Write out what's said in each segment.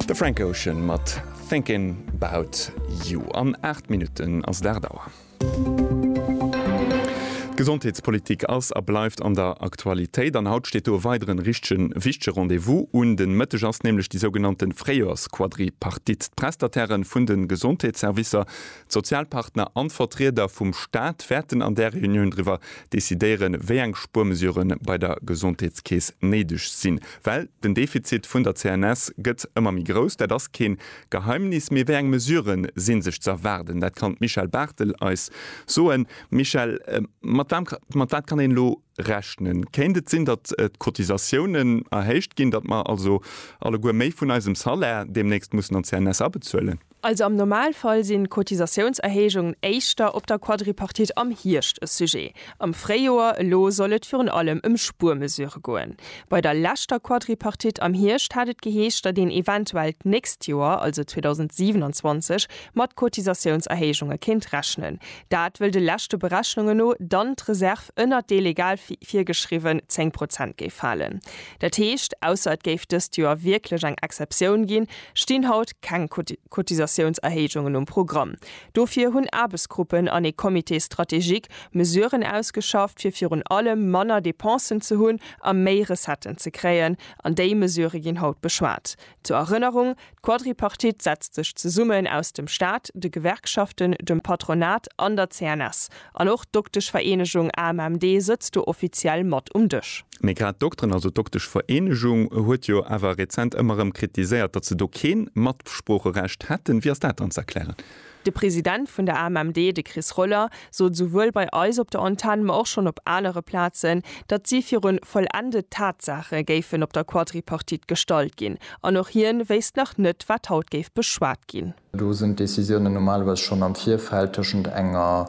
De Frank Ocean mat Thinkin 'bout you. An 8 Minutten ass et 8 Auer. D'Gesondheetspolitik ass a bleift an der Aktualitéit an haut steet do e weideren richtegen wichtege Rendez-vous un. Den Mëtteg ass nämlech déi sougenannten Fréijoersquadripartite. D'Prestatairen vun den Gesondheetsservicer, d'Sozialpartner an d'Vertrieder vum Staat wäerten an där Reunioun driwwer decidéieren, wéi eng Spuermesuren bei der Gesondheetskeess néideg sinn. Well den Defizit vun der CNS gëtt ëmmer méi grouss, dat ass kee Geheimnis. Mee wéi eng Mesurë si sech ze erwaarden? Dat kann d'Michèle Barthel eis soen. Michèle, mat wam, mat wat kann een elo rechnen? Kéint et sinn, datt d'Cotisatiounen erhéicht ginn, datt mer also alleguer méi vun eisem Salaire deemnächst mussen an d'CNS abezuelen? Also am Normalfall sinn d'Cotisatiounserhéijungen éischter op der Quadripartite am Hierscht e Sujet, am Fréijoer. Elo soll et virun allem ëm Spuermesurë goen. Bei der leschter Quadripartite am Hierscht hat et geheescht, datt een eventuell d'nächst Joer, also 2027, mat Cotisatiounserhéijunge kéint rechnen. Dat wëll de leschte Berechnunge no dann d'Reserv ënnert déi legal virgeschriwwen 10 Prozent géif falen. Dat heescht, ausser et géif dëst Joer wierklech eng Exceptioun ginn, stinn haut keng Cotisatiounserhéijungen um Programm. Dofir hunn Aarbechtsgruppen an ee Comité stratégique Mesuren ausgeschafft, fir virun allem manner Dépensen ze hunn a méi Recetten ze kréien. An déi Mesurë ginn haut beschwat. Zur Erënnerung, D'Quadripartite setzt sech zesummen aus dem Staat, de Gewerkschaften, dem Patronat an der CNS. An och d'Dokteschvereenegung AMMD sëtzt do offiziell mat um Dësch. Mee grad d'Dokteren, also d'Dokteschvereenegung huet jo awer rezent ëmmer erëm kritiséiert, datt se do kee Matsproocherecht hätten. Wéi ass dat dann ze erklären? De President vun der AMMD, de Chris Roller, sot souwuel bei eis op der Antenn, ma och schonn op anere Plazen, datt si viru vollendet Tatsaache géifen op der Quadripartite gestallt ginn. An och hien wéisst nach net, wat haut géif beschwat ginn. Do sinn d'Décisiounen normalerweis schonn am Virfeld tëschent enger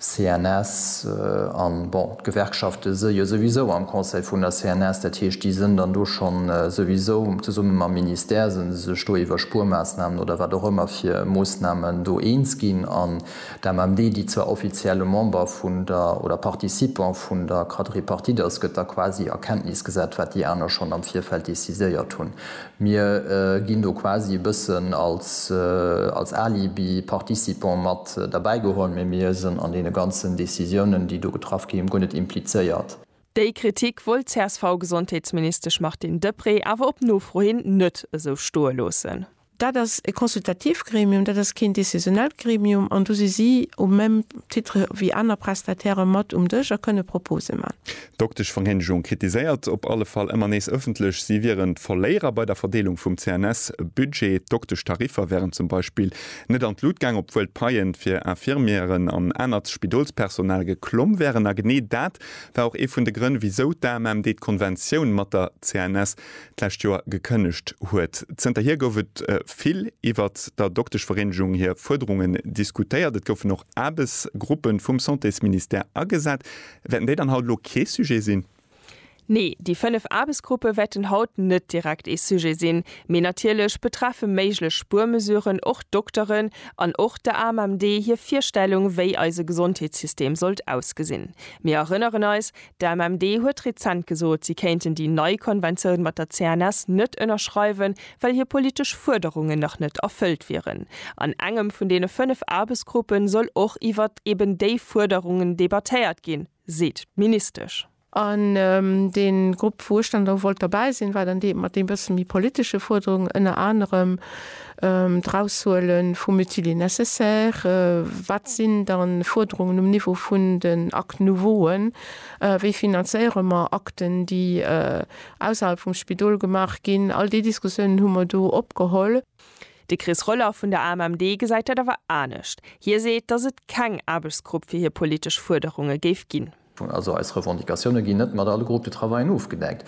CNS an, bon, d'Gewerkschafte si jo souwisou am Conseil vun der CNS, dat heescht, déi sinn dann do schonn souwisou zesumme mam Ministère, si se sech do iwwer Spuermaassnamen oder wat och ëmmer fir Moossnamen do eens ginn. An d'AMMD, déi zwar offiziell e Member vun der, oder Participant vun der Quadripartite ass, gëtt da quasi a Kenntnis gesat, wat déi aner schonn am Virfeld déciséiert hunn. Mir ginn do quasi e bëssen als Alibi participant mat derbäi geholl, mee mir sënn an deene ganzen Decisiounen, déi do getraff gi hunn, guer net implizéiert. Déi Kritik wollt d'CSV-Gesondheetsministesch Martine Deprez awer op Nofro hin net esou stoe loossen. Dat ass e consultative Gremium, dat ass keen decisionellt Gremium an do si si au même titre wéi aner Prestataire mat um Dësch a kënne Propose man. D'Dokteschvereenigung kritiséiert op alle Fall ëmmer nees ëffentlech, si wieren d'Verléierer bei der Verdeelung vum CNS-Budget. D'Dokteschtariffer wären zum Beispill net an d'Lut gaang, obwuel d'Paie fir Infirmieren an anert Spidolspersonal geklomm wären. A genee dat war och ee vun de Grënn, wisou d'AMMD d'Konventioun mat der CNS d'lescht Joer gekënnegt huet. Zënterhier gouf et vill iwwert der Dokteschvereenigung hir Fuerderungen diskutéiert. Et goufen och Aarbechtsgruppe vum Santésministère agesat, Wäerten déi dann haut elo kee Sujet sinn? Nee, déi fënnef Aarbechtsgruppe wäerten haut net direkt ee Sujet sinn. Mee natierlech betreffe méiglech Spuermesuren och d'Dokteren an och der AMMD hir Virstellung, wéi eise Gesondheetssystem sollt ausgesinn. Mir erënneren eis, d'AMMD huet rezent gesot, si kéinten déi nei Konventioun mat der CNS net ënnerschreiwen, well hir politesch Fuerderungen nach net erfëllt wieren. An engem vun deene fënnef Aarbechtsgruppen soll och iwwer eben déi Fuerderungen debattéiert ginn, seet d'Ministesch. An deen Grupp, wou ech dann elo wollt derbäi sinn, war dann dee mat deem bëssen méi politesche Fuerderungen, ënner anerem d'Eraushuele vum Utile et nécessaire. Wat sinn dann Fuerderungen um Niveau vun den Actes nouveauen? Wéi finanzéiere mer Akten, déi Ausserhalb vum Spidol gemaach ginn. All déi Diskussiounen hu mer do opgeholl. De Chris Roller vun der AMMD gesäit dat awer anescht. Hie seet, datt et keng Aarbechtsgrupp fir hir politesch Fuerderunge géif ginn. Also eis Revendicatioune ginn net mat alle Groupes de travaillen ofgedeckt.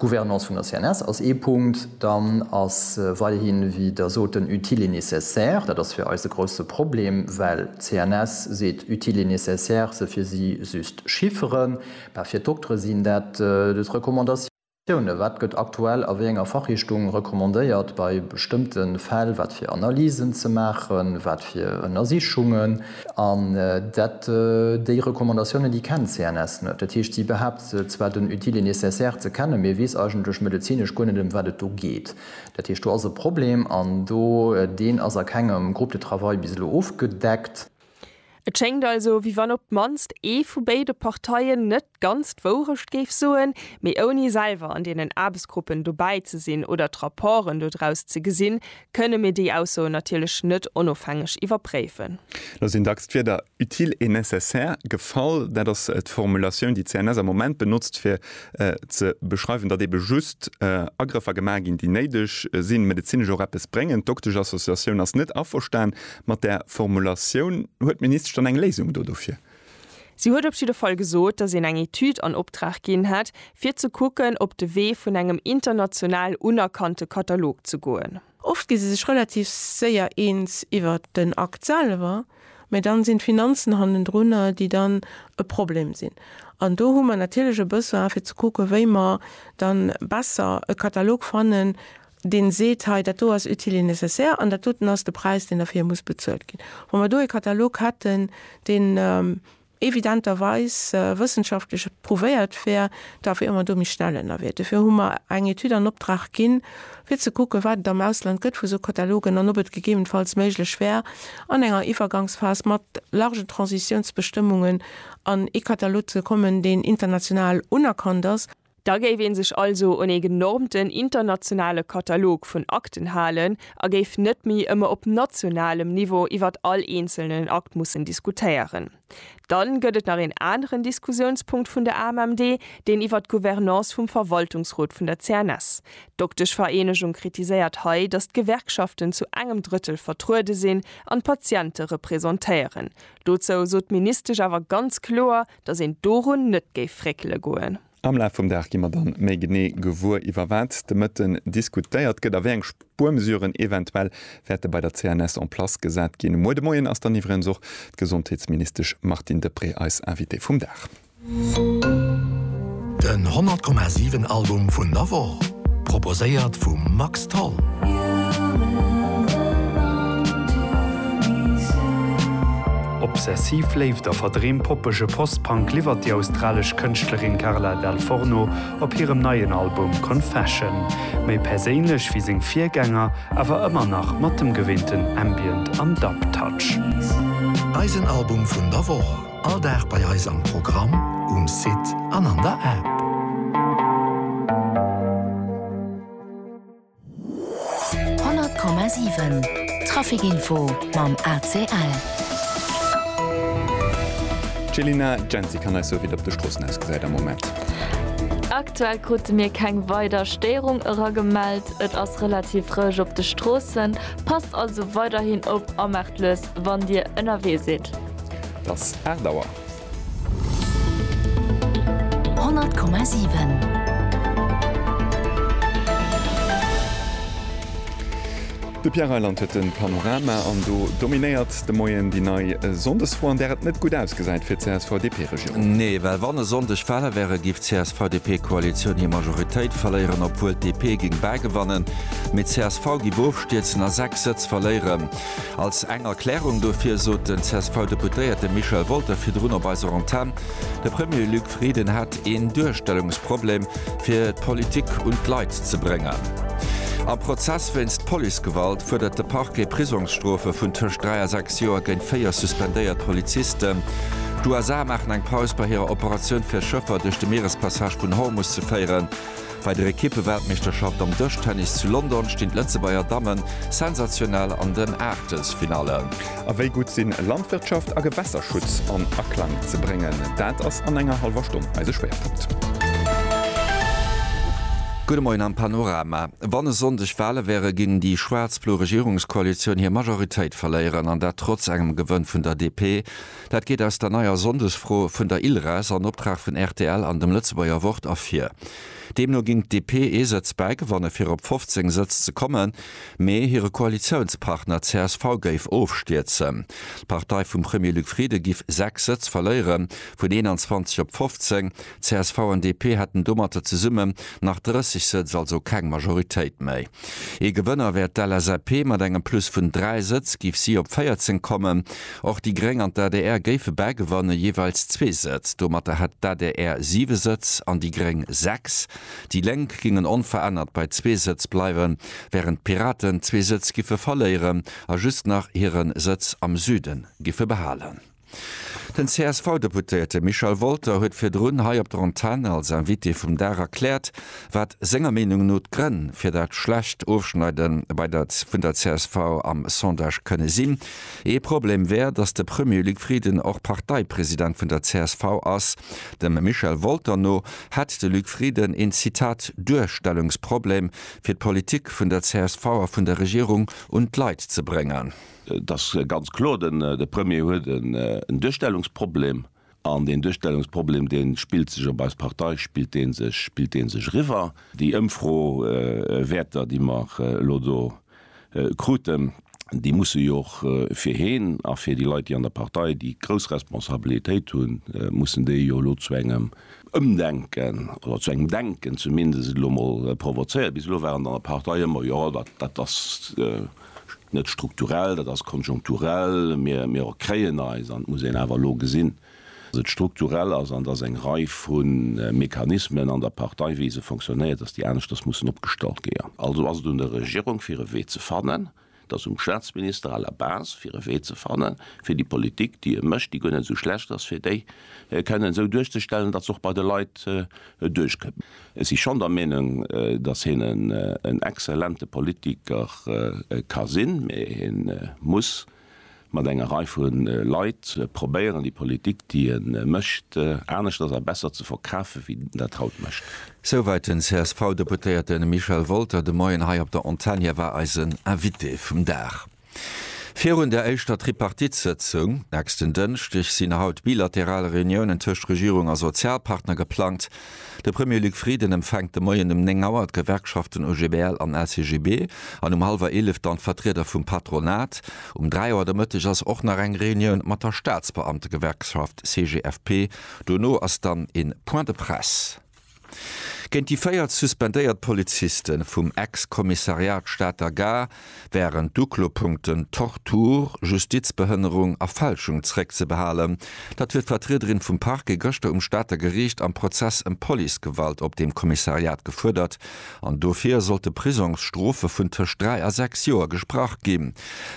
D'Gouvernance vun der CNS ass ee Punkt. Dann ass weiderhi wéi Der sot den utile et nécessaire. Dat ass fir eis e grousse Problem, well d'CNS seet utile et nécessaire se fir si just Chifferen. Mä fir d'Doktere sinn dat just Recommandatiounen. Wat gëtt aktuell a wéi enger Fachrichtung recommandéiert bei bestëmmte Fäll, wat fir Analysen ze maachen, wat fir Ënnersichungen? An dat déi Recommandatiounen, déi kennt d'CNS net. Dat heescht, si behaapt zwar den Utile et nécessaire ze kennen, mä weess eigentlech medezinesch guer net, ëm wat et do geet. Dat heescht, do ass e Problem an do, deen ass a kengem Groupe de travail bis elo ofgedeckt. Et schéngt also, wéi wann op d'mannst ee vu béide Parteien net ganz d'Wourecht géif soen, mee ouni selwer an deenen Aarbechtsgruppen dobäi ze sinn oder d'Rapporten dodraus ze gesinn, kënne mir déi Aussoen natierlech net onofhängeg iwwerpréifen. Lo sinn dacks d'Wierder utile et nécessaire gefall. Dat ass d'Formulatioun, déi d'CNS am Moment benotzt, fir ze beschreiwen, datt ebe just Agrëffer gemaach ginn, déi néideg sinn, medezinesch och eppes bréngen. D'Doktesch-Associatioun ass net averstan Mat där Formulatioun huet d'Ministesch dann eng Léisung do dofir? Si huet op jidde Fall gesot, datt een eng Etüd an Optrag ginn hätt, fir ze kucken, op de Wee vun engem international unerkannte Katalog ze goen. Oft gi se sech relativ séier eens iwwer den Akt selwer, mä dann sinn d'Finanzen hannendrunner, déi dann e Problem sinn. An do hu mer natierlech e Besoin, fir ze kucken, wéi mer dann besser e Katalog fannen, deen seet, hei dat do ass utile et nécessaire an dat doten ass de Präis, deen derfir muss bezuelt ginn. Wa mer do e Katalog hätten, deen evidenterweis wëssenschaftlech prouvéiert wär, da wiere mer do méi schnell ënnerwee. Dofir hu mer eng Etüd an Optrag ginn, fir ze kucken, wat et am Ausland gëtt vu sou Katalogen an ob et gegebenfalls méiglech wär, an enger Iwwergangsphas mat largen Transitionsbestëmmungen an ee Katalog ze kommen, deen international unerkannt ass. Da géif ee sech also un ee genormten internationale Katalog vun Akten halen a géif net méi ëmmer op nationalem Niveau iwwert all eenzelnen Akt mussen diskutéieren. Dann gëtt et nach een aneren Diskussiounspunkt vun der AMMD, deen iwwert d'Gouvernance vum Verwaltungsrot vun der CNS. D'Dokteschvereenegung kritiséiert hei, datt d'Gewerkschaften zu engem Drëttel vertruede sinn an d'Patiente repräsentéieren. Dozou sot d'Ministesch awer ganz kloer, Dass een dorun net géif réckele goen. Am Laf vum Dag gi mer dann méi genee gewuer, iwwer wat de Mëtten diskutéiert gëtt a wéi eng Spuermesuren eventuell wäerte bei der CNS en place gesat ginn. Um Muer de Moien ass dann iwwregens och d'Gesondheetsministesch Martine Deprez eis Invitée vum Dag. Den 100,7 Album vun der Woch, proposéiert vum Max Tholl. Obsessiv Léift a verdreem poppege Post-Punk liwwert déi australesch Kënschtlerin Carla Dal Forno op hirem neien Album Confession. Méi perséinlech wéi seng Virgänger, awer ëmmer nach mat dem geweenten Ambient an Dub-Touch. Eisen Album vun der Woch. All Dag bei eis am Programm, um Site an an der App. Honnert Komma siwen, Trafikinfo mam ACL. D'Jelina Genzi kann eis soen, wéi et op de Stroossen ausgesäit am Moment. Aktuell krute mir keng weider Stéierung eragemellt. Et ass relativ roueg op de Stroossen. Passt also weiderhin op a maacht lues wann dir ënnerwee sidd. Dass 8 Auer. 100,7. De Pierre Reyland huet den Panorama an do dominéiert de Moien déi nei Sonndesfro, an där et net gutt ausgesäit fir d'CSV-DP-Regierung. Nee, well wann e Sonndeg d'Wale wären, géif d'CSV-DP-Koalitioun hir Majoritéit verléieren, obwuel d'DP géing bäigewannen, mee d'CSV géif ofstierzen a 6 Sëtz verléieren. Als eng Erklärung dofir sot den CSV-Deputéierte Michel Wolter virdrun op eiser Antenn, de Premier Luc Frieden hätt een Duerstellungsproblem, fir d'Politik un d'Leit ze bréngen. Am Prozess wéinst Policegewalt fuerdert de Parquet Prisongsstrofe vun tëscht dräi a sechs Joer géint véier suspendéiert Polizisten. D'USA maachen eng Paus bei hirer Operatioun fir Schëffer duerch de Mierespassage vun Hormus ze féieren. Bei der Ekippe-Weltmeeschterschaft am Dëschtennis zu London stinn d'Lëtzebuerger Damme sensationell an den Aachtelsfinalle. A wéi gutt sinn Landwirtschaft a Gewässerschutz an Aklang ze bréngen? Dat ass an enger hallwer Stonn eise Schwéierpunkt. Gudde Moien am Panorama. Wann e Sonndeg Wale wäre ginn, déi schwaarz-blo Regierungskoalitioun hir Majoritéit verléieren, an dat trotz engem Gewënn vun der DP, Dat geet aus der neier Sonndesfro vun der Ilres an Optrag vun rtl an dem Lëtzebuerger Wort ervir. Deemno ging d'DP ee Sëtz bäigewanne fir op 15 Sëtz ze kommen, mee hire Koalitiounspartner csv géif ofstierzen. D'Partei vum Premier Luc Frieden giff 6 Sëtz verléieren, vun 21 op 15. Csv an DP hätten domatter zesumme nach 30 Sëtz, also keng Majoritéit méi. Ee Gewënner wär d'LSAP, mat engem Plus vun 3 Sëtz géif si op 14 kommen. Och déi Gréng an d'ADR géife bäigewanne jeeweils zwee Sëtz. Domatter hätt d'ADR 7 Sëtz an déi Gréng 6. Déi Lénk gingen onverännert bei zwee Sëtz bleiwen, wärend d'Piraten zwee Sëtz giffe verléieren a just nach hire Sëtz am Süden giffe behalen. Den CSV-Deputéierte Michel Wolter huet virdrun hei op der Antenn als Invité vum Dag erkläert, wat senger Meenung no d'Grënn fir dat schlecht Ofschneide bei der vun der csv am Sondage kënne sinn. Ee Problem wär, datt de Premier Luc Frieden och Parteipresident vun der csv ass. Dem Michel Wolter no hätt de Luc Frieden een Zitat Duerstellungsproblem, fir d'Politik vun der csv a vun der Regierung un d'Leit ze bréngen. Et ass ganz kloer, de Premier huet en Duerstellungsproblem. An deen Duerstellungsproblem, dee spillt sech op eis Partei, spillt dee sech, spillt dee sech eriwwer. Déi Ëmfrowäerter, déi mer elo do kruten, déi musse jo och fir hien a fir déi Leit, déi an der Partei déi grouss Responsabilitéit hunn, mussen déi jo elo zu engem Ëmdenken oder zu engem Denken zumindest elo emol provozéieren. Bis elo war et an der Partei ëmmer, jo, dat ass, net strukturell, dat ass konjunkturell, mir rekréien eis, an et muss een awer elo gesinn, datt et strukturell ass an datt eng Rei vu Mechanismen an der Partei, wéi se fonctionnéiert, datt déi aneschters mussen opgestallt géa. Also ass et un der Regierung, fir e Wee ze fannen, et ass um Staatsminister à la base, fir e Wee ze fanne fir déi Politik, déi e mécht, déi guer net esou schlecht ass, fir déi kënnen esou duerchzestellen, datt se och bei de Leit duerchkënnt. Ech si schonn der Meenung, datt hien en exzellente Politiker ka sinn, mä hien muss mat enger Rei vu Leit probéieren, déi Politik, déi hien mécht, aneschters a besser ze verkafen, wéi en dat haut mécht. Souwäit den CSV-Deputéierte Michel Wolter de Moien hei op der Antenn. Hie war eisen Invité vum Dag. Virun der éischter Tripartite-Sëtzung nächsten Dënschdeg sinn haut bilateral Reuniounen tëscht Regierung a Sozialpartner geplangt. De Premier Luc Frieden empfänkt de Moien um 9 Auer d'Gewerkschaften OGBL an LCGB an um hallwer 11 dann d'Vertrieder vum Patronat. Um 3 Auer de Mëtteg ass och nach eng Reunioun mat der Staatsbeamtegewerkschaft CGFP. Dono ass dann ee Point de presse. Géint déi véier suspendéiert Poliziste vum Ex-Kommissariat Stater Gare wären d'Uklopunkten Tortur, Justizbehënnerung a Fälschung zréckzebehalen. Dat huet d'Vertriederin vum Parquet gëschter um Stater Geriicht am Prozess ëm Policegewalt op deem Kommissariat gefuerdert an dofir sollte Prisongsstrofe vun tëscht dräi a sechs Joer gesprach ginn.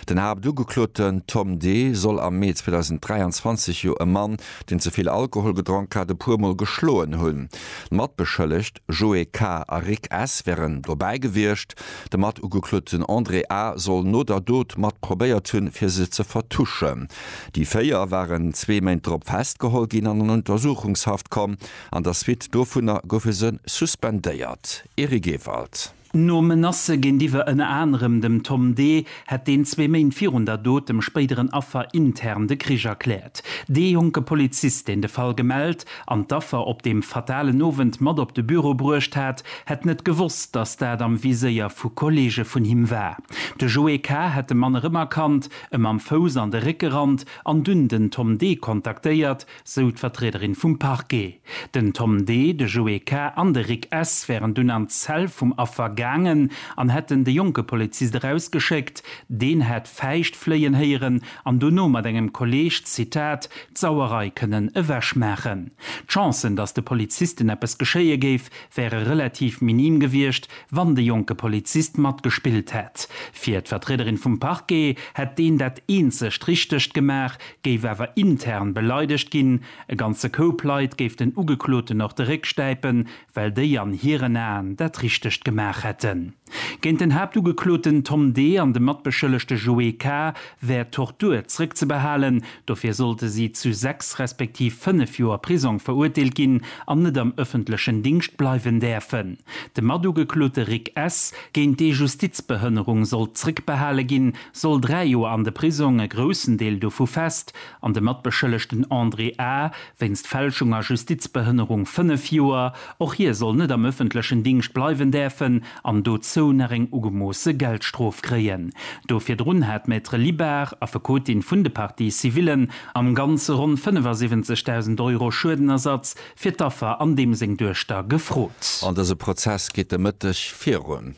Den Haaptugekloten Tom D. soll am Mee 2023 jo e Mann deen ze vill Alkohol gedronk hat, e puer Mol geschloen hunn. D'Matbeschëllegt Joe K. a Rick S. wären dobäi gewiescht. De Matugekloten André A. soll no der Dot mat probéiert hunn, fir se ze vertuschen. Déi véier waren zwee Méint drop festgeholl ginn an an Untersuchungshaft komm. An der Suite dovunner goufe se suspendéiert. Eric Ewald. No Menacë géintiwwer ënner anerem dem Tom Dee hätt deen zwee Méint virun der Dot dem spéideren Affer intern de Krich erkläert. Dee jonke Polizist, deen de Fall gemellt an d'Affer op deem fatalen Owend mat op de Büro bruecht hat, hätt net gewosst, datt dat am Viséier vu Kolleege vun him war. De Joé K. hätt de Mann erëmerkannt, em am Fouss an de Réck gerannt an dunn den Tom Dee kontaktéiert, sou d'Vertriederin vum Parquet. Den Tom D., de Joé K. an de Rick S. wären dunn an d'Zell vum Affer gaangen an hätten de jonke Polizist erausgeschéckt. Deen hätt Fäischt fléien héieren an dono mat engem Kolleeg, Zitat, d'Sauerei kënnen ewech maachen. D'Chancen, datt de Polizisten eppes geschéie géif, wäre relativ minim gewiescht, wann de jonke Polizist matgespillt hätt. Fir d'Vertriederin vum Parquet hätt deen dat eenzegt Richtegt gemaach, géif awer intern beleidegt ginn, e ganze Koup Leit géif den Ugekloten och de Réck stäipen, well déi an hiren Aen dat Richtegt gemaach hätten. Géint den Haaptugekloten Tom D. an de Matbeschëllegte Joé K. wär Tortur zréckzebehalen, dofir sollte si zu sechs respektiv fënnef Joer Prisong verurteelt ginn an net am ëffentlechen Dingscht bleiwen däerfen. De Matugeklote Rick S. géint dee Justizbehënnerung sollt zréckbehale ginn, soll dräi Joer an de Prisong, e groussen Deel dovu fest, an de Matbeschëllegten André A. wéinst Fälschung a Justizbehënnerung fënnef Joer. Och hie soll net am ëffentlechen Dingscht bleiwen däerfen an dozou nach eng ugemoosse Geldstrof kréien. Do virdrun hat d'Maître Libard, Affekotin vun de Parties civillen, am Ganze ronn 75.000 Euro Schuedenersatz fir d'Affer an deem seng Duechter gefrot. An dëse Prozess geet de Mëtteg virun.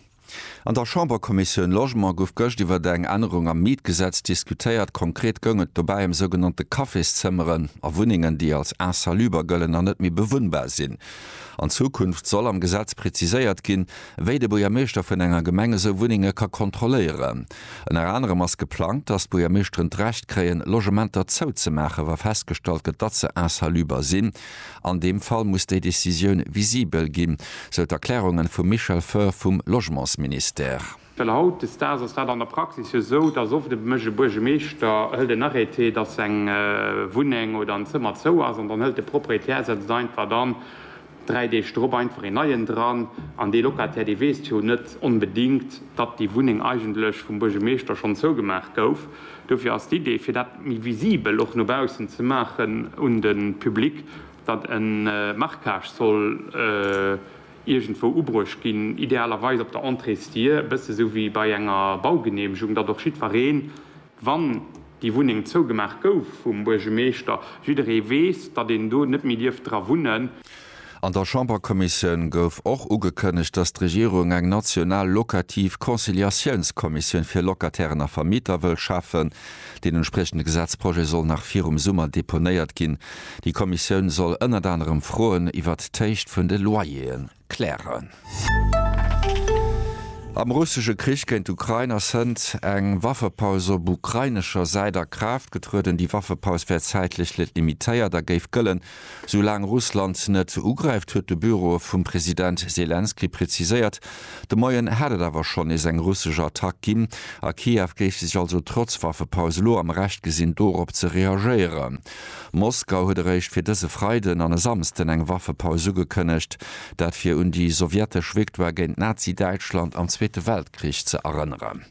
An der Chamberkommissioun Logement gouf gëscht iwwert eng Ännerung am Mietgesetz diskutéiert. Konkret goung et dobäi ëm sougenannte Cafészëmmeren a Wunnengen, déi als insaluber gëllen a net méi bewunnbar sinn. An Zukunft soll am Gesetz preziséiert ginn, wéi de Buergermeeschter vun enger Gemeng esou Wunnenge ka kontrolléieren. Ënner anerem ass geplangt, datt d'Buergermeeschteren d'Recht kréien, Logementer zouzemaachen, wa festgestallt gëtt, datt se insaluber sinn. An deem Fall muss déi Decisioun visibel ginn, sou d'Erklärungen vum Michel Foehr vum Logementsministère. Well haut des Daags ass dat an der Praxis jo esou, dass oft e mécht e Buergemeeschter, hëlt en Arrêté, dass seng Wunneng oder en Zëmmer zou ass, an dann hëlt de Proprietär, setzt einfach dann dräi Deeg drop einfach een neien dran. An dee Locataire, dee weess jo net onbedéngt, datt déi Wunneng eigentlech vum Buergemeeschter schonn zougemaach gouf. Dofir ass d'Idee, fir dat méi visibel och no baussen ze maachen un de Public, datt e Marquage soll iergendwou ubruecht ginn, idealerweis op der Entréesdier, e bësse sou wéi bei enger Baugeneemegung, datt och jiddweree, wann déi Wunneng zougemaach gouf vum Buergemeeschter, jidderee weess, datt een do net méi dierf dra wunnen. An der Chamberkommissioun gouf och ugekënnegt, datt d'Regierung eng national locativ Conciliatiounskommissioun fir Locatairen a Vermieter wëll schafen. Deen entspriechende Gesetzprojet soll nach virum Summer deponéiert ginn. Déi Kommissioun soll ënnert anerem Froen iwwert d'Héicht vun de Loyer'e klären. Am russesche Krich géint d'Ukrain ass hënt eng Waffepaus op ukrainescher Säit a Kraaft getrueden. Déi Waffepaus wär zäitlech limitéiert a géif gëllen, Soulaang Russland net ugräift, huet de Büro vum President Selenskyj preziséiert. De Moien hat et awer schonn nees eng russesch Attack ginn a Kiew géif sech also trotz Waffepaus elo am Recht gesinn dorop ze reagéieren. Moskau huet eréischt fir dëse Freiden an e Samsden eng Waffepaus ugekënnegt, dat fir un déi sowjetesch Victoire géint Nazi-Däitschland am Zweete Weltkrich ze erënneren.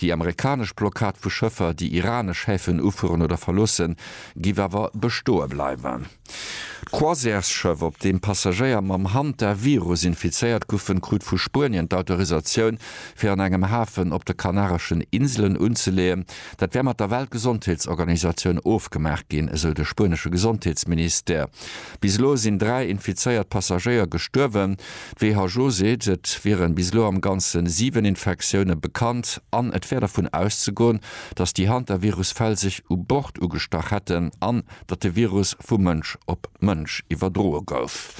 Déi amerikanesch Blockad vu Schëffer, déi iranesch Häfen ufueren oder verloossen, géif awer bestoe bleiwen. D'Croisièresschëff, op deem Passagéier mam Hantavirus infizéiert goufen, krut vu Spuenien d'Autorisatioun, fir an engem Hafen op de Kanareschen Inselen unzeleeën. Dat wär mat der Weltgesondheetsorganisatioun ofgemaach ginn, esou de spuenesche Gesondheetsministère. Bis elo sinn dräi infizéiert Passagéier gestuerwen. D'WHO seet, et wieren bis elo am Ganze 7 Infektioune bekannt an et wär dervun auszegoen, datt déi Hantavirus-Fäll sech u Bord ugestach hätten an datt de Virus vu Mënsch op Mënsch iwwerdroe gouf.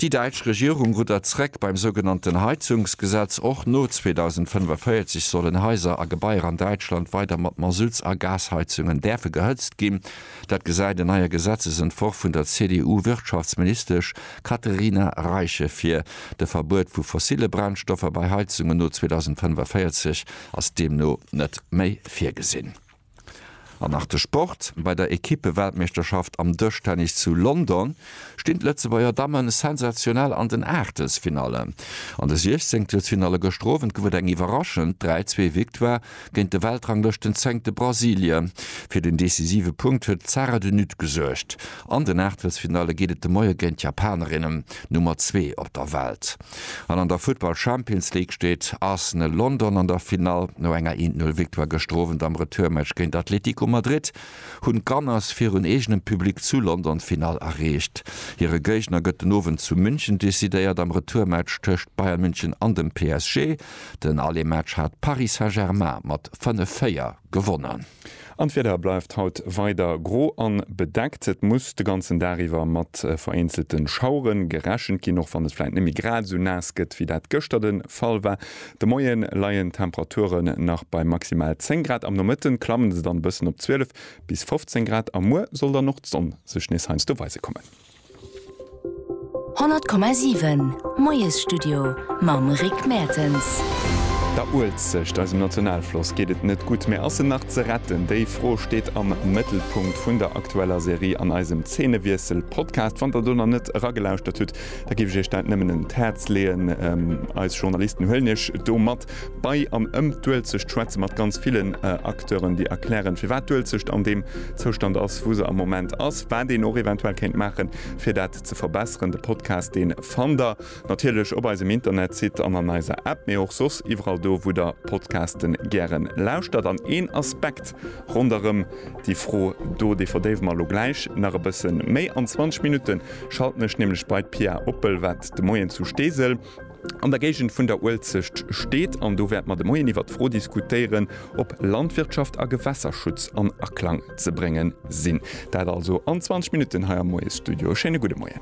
Déi däitsch Regierung ruddert zréck beim sougenannten Heizungsgesetz. Och no 2045 sollen Haiser a Gebaier an Däitschland weider mat Masutts a Gasheizungen däerfe gehëtzt ginn. Dat gesäit en neier Gesetzesentworf vun der CDU-Wirtschaftsministesch Katherina Reiche vir. De Verbuet vu fossille Brennstoffer bei Heizungen no 2045 ass deemno net méi virgesinn. An nach de Sport, Bei der Ekippe-Weltmeeschterschaft am Dëschtennis zu London stinn d'Lëtzebuerger Damme sensationell an den Aachtelsfinallen. An de 16 telsfinalle gëschter Owend gouf et eng iwwerraschend 3-Zwee-Victoire Géint de Weltranglëschtenzéngte Brasilie fir den decisive Punkt huet d'Sara de Nutte gesuergt. An den Aachtelsfinalle geet et de Moie géint d'Japanerinnen, Nummer zwee op der Welt. An an der Futtball Champions League steet Arsenal London an der Finall. No enger 1, 0 Victoire gëschter Owend am Retourmatch géint Atletico Madrid hunn d'Gunners virun eegenem Public zu London d'Finall erreecht. Hire Géigner gëtt den Owend zu München decidéiert am Retourmatch tëscht Bayern München an dem PSG. Den ale Match hat Paris Saint-Germain mat 5, 4 gewonnen. An d'Wieder bleift haut weider gro a bedeckt. Et muss de ganzen Dag iwwer mat vereenzelte Schauere gerechent ginn, och wann et vläit net méi grad esou naass gëtt, wéi dat gëschter de Fall war. De Moie leien d'Temperaturen nach bei maximal 10 Grad, am Nomëtte klamme se dann e bëssen op 12 bis 15 Grad a muer soll dann och d'Sonn sech nees heiansdo weise kommen. 100,7 Moiesstudio mam Rick Mertens. Der Uelzecht, eisem Nationalfloss, geet et net gutt, mä ass en nach ze retten? Déi Fro steet am Mëttelpunkt vun der aktueller Serie an eisem Zeenewiessel-Podcast. Wann der do nach net eragelauschtert hutt, da géif ech iech dat nëmmen un d'Häerz leeën. Eis Journalisten huelen iech do mat Bei an ëm d'Uelzecht schwätze mat ganz villen Acteuren, déi erklären, firwat d'Uelzecht an deem Zoustand ass, wou se am Moment ass, wat een och eventuell kéint maachen, fir dat ze verbesseren. De Podcast, dee fannt der natierlech op eisem Internetsite an an eiser App, mee och soss iwwerall do, wou der Podcaste gäre lauschtert. An een Aspekt ronderëm déi Fro do, dee verdéiwe mer elo gläich nach e bësse méi. An 20 Minutte schalten ech nämlech bei d'Pia Oppel, wat de Moien zu Steesel, An der Géigend vun der Uelzecht steet, an do wäerte mer de Moien iwwert d'Fro diskutéieren, ob Landwirtschaft a Gewässerschutz an Aklang ze brénge sinn. Dat also an 20 Minutten hei am Moiesstudio. E schéine gudde Moien.